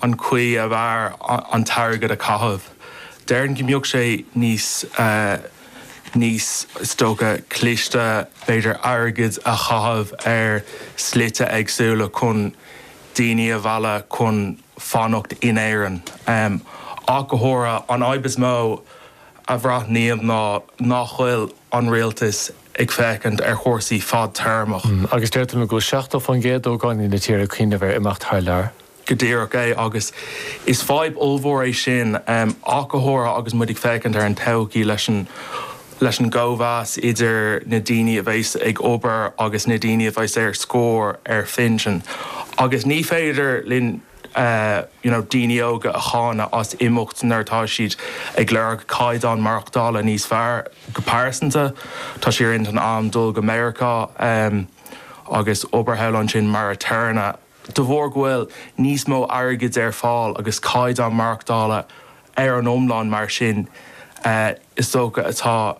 an chaoi ab fhearr an t-airgead a chaitheamh. Déarfainn go mbeadh sé níos, níos, is dócha, cliste b'fhéidir airgead a chaitheamh ar shlite éagsúla chun daoine a mhealladh chun fanacht in Éirinn. Ach go háirithe, an fhadhb is mó a bhraithnim ná nach bhfuil an rialtas ag féachaint ar chúrsaí fadtéarmach. Agus deir tú go bhfuil 70% d'ógánaigh na tíre ag cuimhneamh ar imeacht thar lear. Go díreach é, agus is fadhb ollmhór é sin. Ach go háirithe agus muid ag féachaint ar an todhchaí leis a leis an gcóimheas idir na daoine a bheas ag obair agus na daoine a bheas ar scor ar phinsean. Agus ní féidir linn you know daoine óga a cháineadh as imeacht nuair atá siad ag lorg caighdeán maireachtála níos fearr. Go pearsanta, tá sé ar intinn agam dul go Meiriceá agus obair thall ansin mar aturnae. De bharr go bhfuil níos mó airgid ar fáil agus caighdeán maireachtála ar an iomlán mar sin, is dócha atá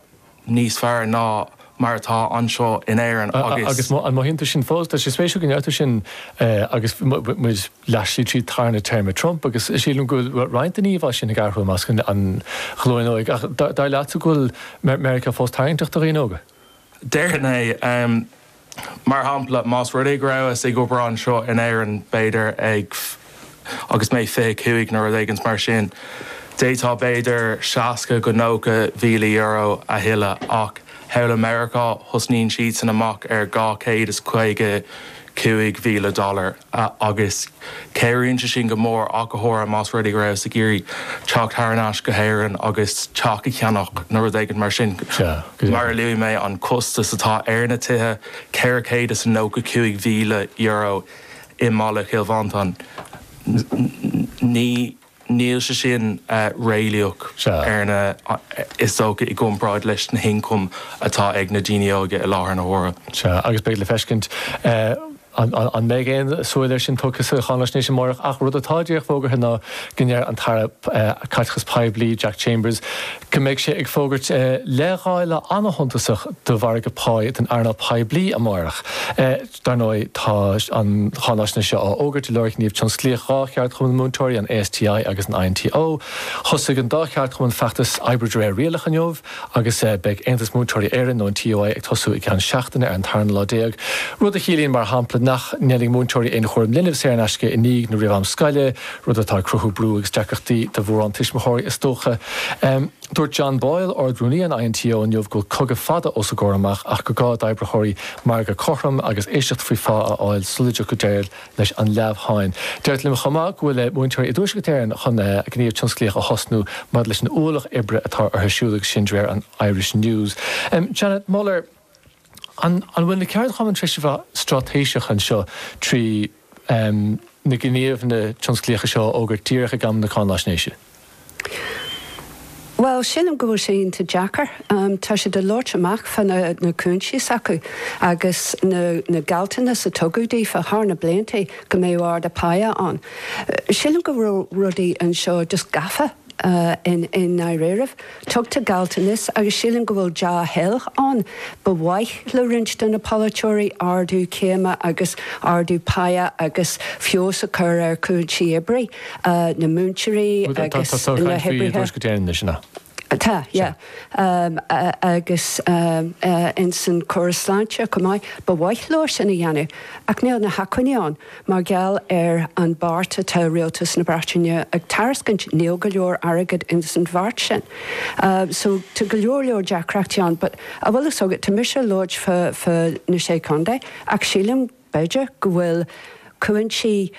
níos fearr ná mar atá anseo in Éirinn agus. Agus an mothaíonn tú sin fós? Tá sé spéisiúil go ndeir tú sin é agus muid. Leath slí trí tarna téarma Trump agus sílim go bhfuil roinnt den íomhá sin ag athrú i measc an ghlúin óig. Ach dar leatsa go bhfuil Meiriceá fós tarraingteach do dhaoine óga? Déarfainn é. Mar shampla, más rud é go rabhas ag obair anseo in Éirinn, b'fhéidir, ag agus mé 25 nó rud éigint mar sin, d'fhéadfá b'fhéidir 60 go 90 mhíle euro a thuilleamh ach thall i Meiriceá tosnaíonn siadsan amach ar dhá chéad is caoga cúig mhíle dollar. agus cabhraíonn sé sin go mór ach go háirithe más rud é go rabhas ag iarraidh teacht thar n-ais go hÉirinn agus teach a cheannach nó rud éigin mar sin. Mar a luaigh mé, an costas atá ar na tithe, ceithre chéad is a nócha cúig mhíle euro i mBaile Chill Mhantáin, ní. níl sé sin réalaíoch ar na is dócha i gcomparáid leis na hioncaim atá ag na daoine óga i láthair na huaire. Sea, agus beidh le feiscint an mbeidh aon súil air sin tugtha sa cháinaisnéis amárach ach rud atá díreach fógartha ná go ndeir an tAire Caiteachais Poiblí, Jack Chambers, go mbeidh sé ag fógairt leithdháileadh an-shuntasach do mhargadh pá don earnáil poiblí amárach. Dar ndóigh, tá an cháinaisnéis seo á fhógairt i lár gníomh tionsclaíoch dhá cheardchumann múinteoirí, an ASTI agus an INTO. Thosaigh an dá cheardchumann feachtas oibre de réir rialach inniu agus beidh Aontas Múinteoirí Éireann, nó an TUI, ag tosú i gceann seachtaine ar an tarna lá déag, rud a chiallaíonn, mar shampla, nach ndéanfaidh múinteoirí aon chúram linbh saor in aisce i ndiaidh nó roimh am scoile, rud atá ag cruthú brú agus deacrachtaí do mhórán tuismitheoirí, is dócha. Dúirt John Boyle, Ard-Rúnaí an INTO, inniu go bhfuil cogadh fada os a gcomhair amach ach gur gá d'oibritheoirí margadh cothrom agus éisteacht faoi phá a fháil sula dtiocfaidh deireadh leis an leamhsháinn. Deirtear liom chomh maith go bhfuil múinteoirí i dTuaisceart Éireann chun gníomh tionsclaíoch a thosnú maidir leis an ualach oibre atá orthu siúd agus sin de réir an Irish News. Janet Muller, An bhfuil na ceardchumainn tar éis a bheith straitéiseach anseo trí. na gníomhanna tionsclaíocha seo a fhógairt díreach ag am na cáinaisnéise. Bhuel, sílim go bhfuil sé iontach deacair. Tá siad ag labhairt amach fá na cúinsí s'acu agus na gealltanas a tugadh daofa thar na blianta go mbeadh ardú páighe ann. Sílim go bhfuil rudaí anseo just gafa. i ndáiríribh, tugtar gealltanas agus sílim go bhfuil dea-thoil ann. Ba mhaith le roinnt de na polaiteoirí ardú céime agus ardú páighe agus feabhas a chur ar chúinsí oibre na múinteoirí agus na hoibrithe. Tá, yeah. Agus ins an córas sláinte chomh maith, ba mhaith leo sin a dhéanamh ach níl na hacmhainní ann. Mar gheall ar an bheart atá Rialtas na Breataine ag tairiscint níl go leor airgid ins an bheart sin. So tá go leor leor deacrachtaí ann but a bhfuil fhios agat tá mise ag labhairt fá fá na Sé Chontae ach sílim b'fhéidir go bhfuil cúinsí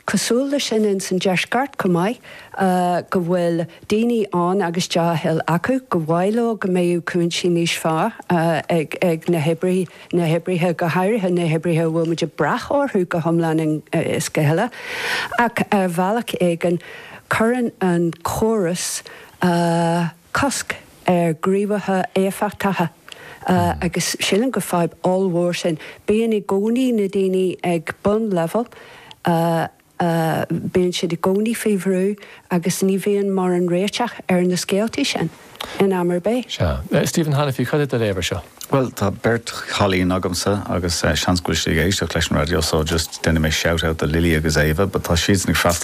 cosúil le sin ins an Deisceart chomh maith go bhfuil daoine ann agus dea-thoil acu gur mhaith leo go mbeadh cúinsí níos fearr ag ag na hoibrithe na hoibrithe, go háirithe na hoibrithe a bhfuil muid ag brath orthu go hiomlán is go huile, ach ar bhealach éigin cuireann an córas cosc ar ghníomhartha éifeachtacha agus sílim gur fadhb ollmhór sin. Bíonn i gcónaí na daoine ag bunleibhéal. a mbíonn siad i gcónaí faoi bhrú agus ní bhíonn mórán réiteach ar na scéaltaí sin in am ar bith. Sea. Stephen Hanniffy, cad é do léamh ar seo? Bhuel, tá beirt chailín agamsa agus seans go bhfuil siad ag éisteacht leis an raidió so just déanfaidh mé shout-out do Lily agus Éabha but tá siadsan ag freastal ar